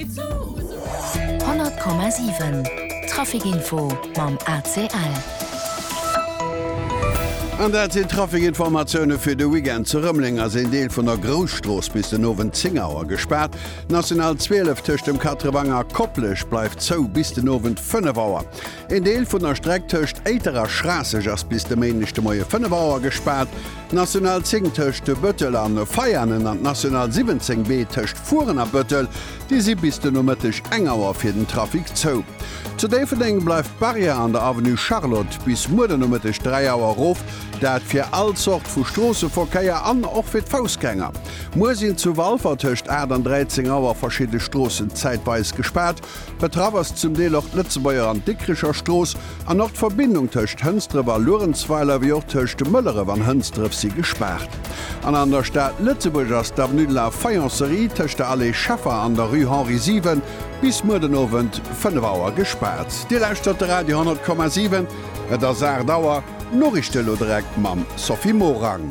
100,7 Trafikinfo mam ACL. An dat sinn d'Trafikinformatioune fir de Weekend. Zu Rëmeleng ass een Deel vun der Grousstrooss bis den Owend 10 Auer gespaart. D'National 12 tëscht dem Quatrevang a Koplescht bleift zou bis den Owend 5 Auer. Een Deel vun der Streck tëscht Éiter a Schraasseg ass bis de Méindeg de Moie 5 Auer gespaart. D'National 10 tëscht Bëttel an Veianen an d'National 17 B tëscht Furen a Bëttel, déi si bis de Nomëtteg eng Auer fir den Trafic zou. Zu Déifferdeng bleift d'Barrière an der Avenue Charlotte bis muer den Nomëtteg 3 Auer erof, dat fir all Zort vu Stroosseverkéier an och fir d'Foussgänger. Muer sinn zu Walfer tëscht 8 an 13 Auer verschidde Stroossen zäitweis gespaart. Betraff ass zum Deel och d'Lëtzebuerger an Dikricher Strooss an och d'Verbindung tëscht Hënsdref a Luerenzweiler, wéi och tëscht Mëlleref an Hënsdref si gespaart. An an der Stad Lëtzebuerg ass d'Avenue de la Faïencerie tëscht der Allée Scheffer an der Rue Henri 7 bis muer den Owend 5 Auer gespaart. Dir lauschtert de Radio 10,7, et ass 8 Auer. D'Noriichte elo direkt mam Sophie Morang.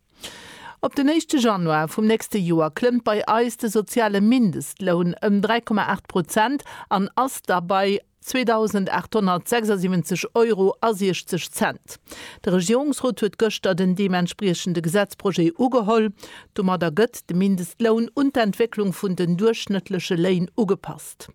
Op den éischte Januar vum nächste Joer klëmmt bei eis de soziale Mindestloun ëm 3,8 Prozent an ass da bei 2.876 Euro a 60 Cent. De Regierungsrot huet gëschter den deementspriechende Gesetzprojet ugeholl. Domadder gëtt de Mindestloun un d'Entwécklung vun den duerchschnëttleche Léin ugepasst.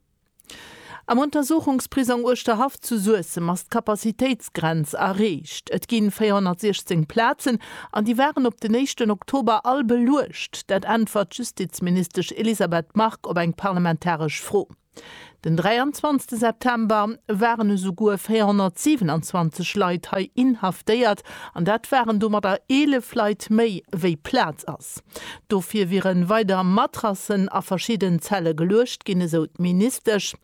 Am Untersuchungsprisong Uerschterhaff zu Suessem ass d'Kapazitéitsgrenz erreecht. Et ginn 416 Plazen an déi waren op den éischten Oktober all beluecht. Dat äntwert d'Justizministesch Elisabeth Margue op eng parlamentaresch Fro. Den 23 September waren esouguer 427 Leit hei inhaftéiert an dat waren domadder 11 Leit méi wéi Plaz ass. Gesetz. Dofir wiere weider Matrassen a verschidden Zelle geluecht ginn, esou d'Ministesch.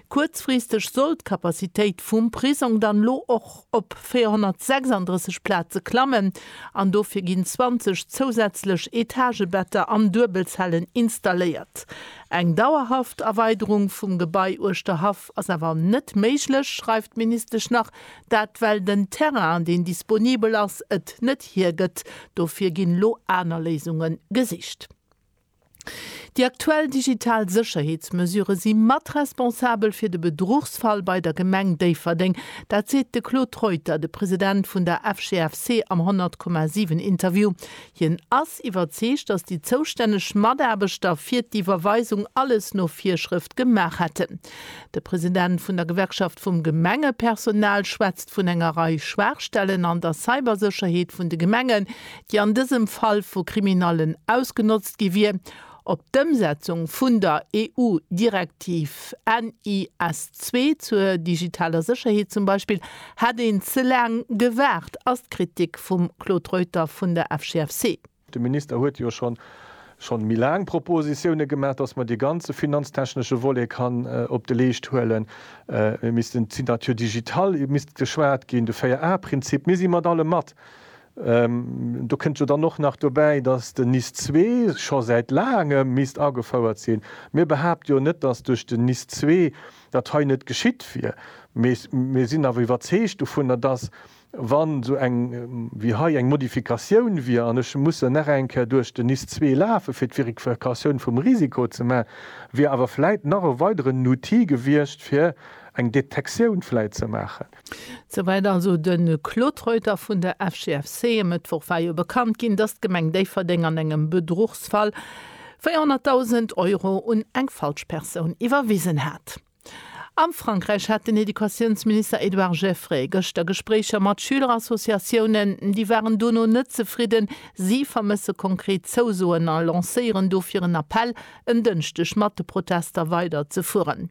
Kuerzfristeg soll d'Capacitéit vum Prisong dann elo och op 436 Plaze klammen an dofir ginn 20 zousätzlech Etagebetter an Duebelzellen installéiert. Eng dauerhaft Erweiderung vum Gebai Uerschterhaff ass awer net méiglech, schreift d'Ministesch nach. Dat well den Terrain, deen disponibel ass, et net hiergëtt. Dofir ginn elo aner Léisunge gesicht. Déi aktuell digital Sécherheetsmesurë si mat responsabel fir de Bedruchsfall bei der Gemeng Déifferdeng. Dat seet de Claude Reuter, de President vun der FGFC am 100,7 Interview. Hien ass iwwerzeegt, datt déi zoustänneg Mataarbechter fir d'Iwwerweisung alles no Virschrëft gemaach hätten. De President vun der Gewerkschaft vum Gemengepersonal schwätzt vun enger Rei Schwaachstellen an der Cybersécherheet vun de Gemengen, déi an dësem Fall vu Kriminallen ausgenotzt gi wier. Op d'Ëmsetzung vun der EU-Direktiv NIS2 zur digitaler Sécherheet zum Beispill hätt een ze laang gewaart, ass d'Kritik vum Claude Reuter vun der FGFC. De Minister huet jo schonn schonn méi laang Propositione gemaach, dass mer dee ganze finanztechnesche Volet kann op de Leescht huelen. Mir missten d'Signature digitale misst geschwat ginn, de 4A-Prinzip. Mir si mat allem mat. Do kënnt jo dann och nach dobäi, dass den NIS ii scho säit laangem misst agefouert sinn. Mir behaapte jo net, dass duerch den NIS ii dat hei net geschitt wier. Mee mir sinn awer iwwerzeegt dovunner, dass Wa sou eng wéi hei eng Modifikatioun wier an ech mussen nach eng Kéier duerch den NIS zwee lafe fir d'Verifikatioun vum Risiko ze maachen, wier awer vläit nach e weideren Outil gewiescht fir eng Detektioun vläit ze maachen. Souwäit also de Claude Reuter vun der FGFC. E Mëttwoch war jo bekannt ginn, datt d'Gemeng Déifferdeng an engem Bedruchsfall 400.000 Euro un eng falsch Persoun iwwerwisen hat. Am Frankräich hat den Educatiounsminister Edouard Geffray gëschter Gespréicher mat Schülerassociatiounen. Déi waren dono net zefridden. Si vermësse konkret Zousoen a lancéieren dofir en Appell, en Dënschdeg mat de Protester weider ze fueren.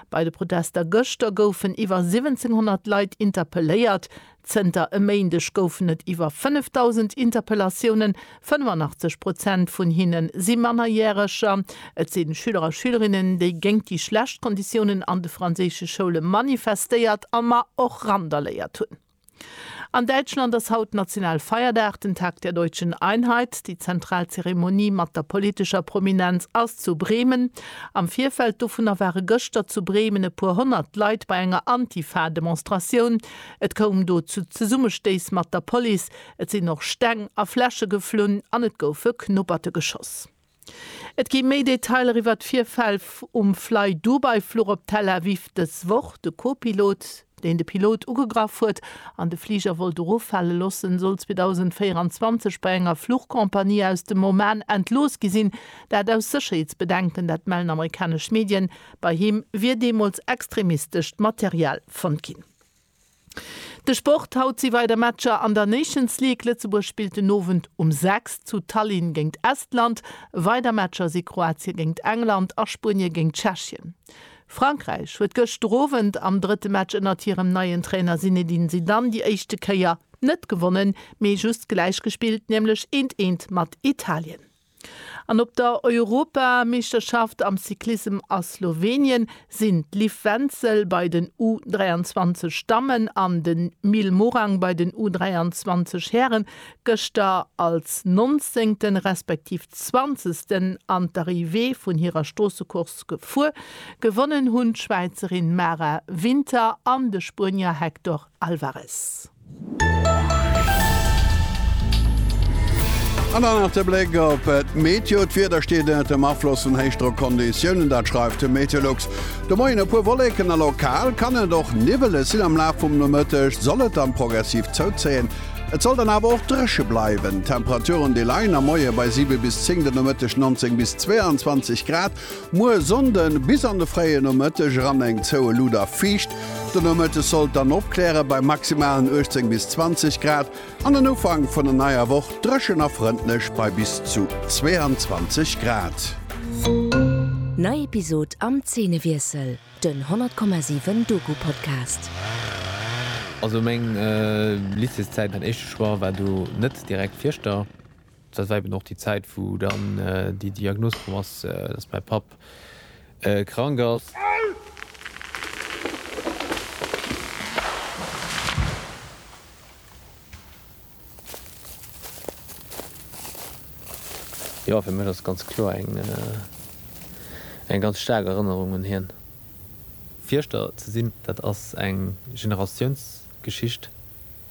Bei de Protester gëschter goufen iwwer 1.700 Leit interpelléiert. Zënter e Méindeg goufen et iwwer 5.000 Interpellatiounen, 85 Prozent vun hinne si Mannerjäreger. Et sinn Schüler a Schülerinnen, déi géint déi schlecht Konditiounen an de franséische Schoule manifestéiert a mar och randaléiert hunn. An Däitschland ass haut national Feierdag, den Tag der deutschen Einheit. Déi zentral Zeremonie mat der politescher Prominenz ass zu Bremen. Am Virfeld dovunner ware gëschter zu Bremen e puer honnert Leit bei enger Antifa-Demonstratioun. Et koum do zu Zesummestéiss mat der Police, et sinn och Steng a Fläsche geflunn an et goufe Knupperte geschoss. Et gi méi Detailer iwwer d'Virfäll um Flydubai-Fluch op Tel Aviv dës Woch. De Co-Pilot, deen de Pilot ugegraff huet an de Fliger wollt eroffale loossen, soll 2024 bei enger Fluchcompagnie aus dem Oman entlooss gi sinn. Dat aus Sécherheetsbedenken, dat mellen amerikanesch Medien. Bei him wier deemools extremistescht Material fonnt ginn. De Sport, Haut si weider Matcher an der Nations League. Lëtzebuerg spillt den Owend um 6 zu Tallinn géingt Estland. Weider Matcher si Kroatie géingt England a Spuenie géingt Tschechien. Frankräich huet gëschter Owend am drëtte Match ënnert hirem neien Trainer Zinedine Zidane déi éischte Kéier net gewonnen, mee just gläich gespillt, nämlech eent eent mat Italien. An op der Europameeschterschaft am Cyclissem a Slowenien sinn d'Liv Wenzel bei den U 23 Dammen an de Mil Morang bei den U 23 Hären gëschter als Nonzéngten, respektiv Zwanzegsten an d'Arrivée vun hirer Stroossecourse gefuer. Gewonnen hunn d'Schwäizerin Mara Winter an de Spuenier Hector Alvarez. An dann nach de Bléck op d'Meteo. D'Wieder steet ënnert dem Afloss vun Héichdrockonditiounen, dat schreift de Meteolux. De Moien e puer Wolleken a lokal kann et och niwweleg sinn. Am Laf vum Nomëtteg soll et dann progressiv zouzéien, et soll dann awer och dréche bleiwen. D'Temperaturen déi leien am Moie bei 7 bis 10, de Nomëtteg 19 bis 22 Grad. Muer Sonnden bis an de fréie Nomëtteg eran eng zoue Luut a fiicht. De Nomëtteg sollt dann opkläre bei maximalen 18 bis 20 Grad an den Ufank vun der neier Woch dréchen a frëndlech bei bis zu 22 Grad. Nei Episod am Zeenewiessel, den 100,7 Doku-Podcast. Also meng Lycéeszäit, mäin éischte Choix war do net direkt Fieschter. Dat war eben och déi Zäit, wou dann déi Diagnos komm ass, dass mäi Papp krank ass. Jo, fir mech ass et ganz kloer eng ganz staark Erënnerung un hien. Fierschter ze sinn, dat ass eng Generatiounsgeschicht.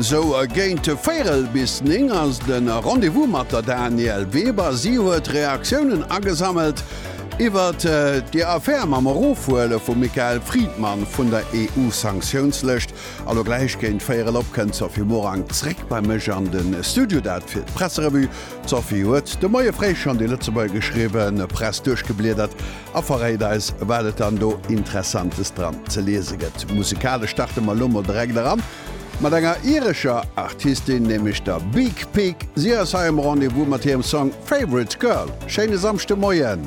Sou géint véirel bis néng ass de Rendez-vous mat der Danièle Weber. Si huet Reaktiounen agesammelt iwwert déi Affär mam Erofhuele vum Michael Friedmann vun der EU-Sanktiounslëscht. Elo gläich géint véirel op kënnt d'Sophie Morang zréck bei mech an de Studio, dat fir d'Presserevue. D'Sophie huet de Moie fréi schonn déi Lëtzebuergeschriwwen Press duerchgebliedert A verréit eis wat et dann do Interessantes dran ze liese gëtt. Musikalesch starte mer elo mol direkt eran mat enger irescher Artistin, nämlech der Beak Peak. Si ass hei um Rendez-vous mat hirem Song Favourite Girl. Schéine Samschdemoien!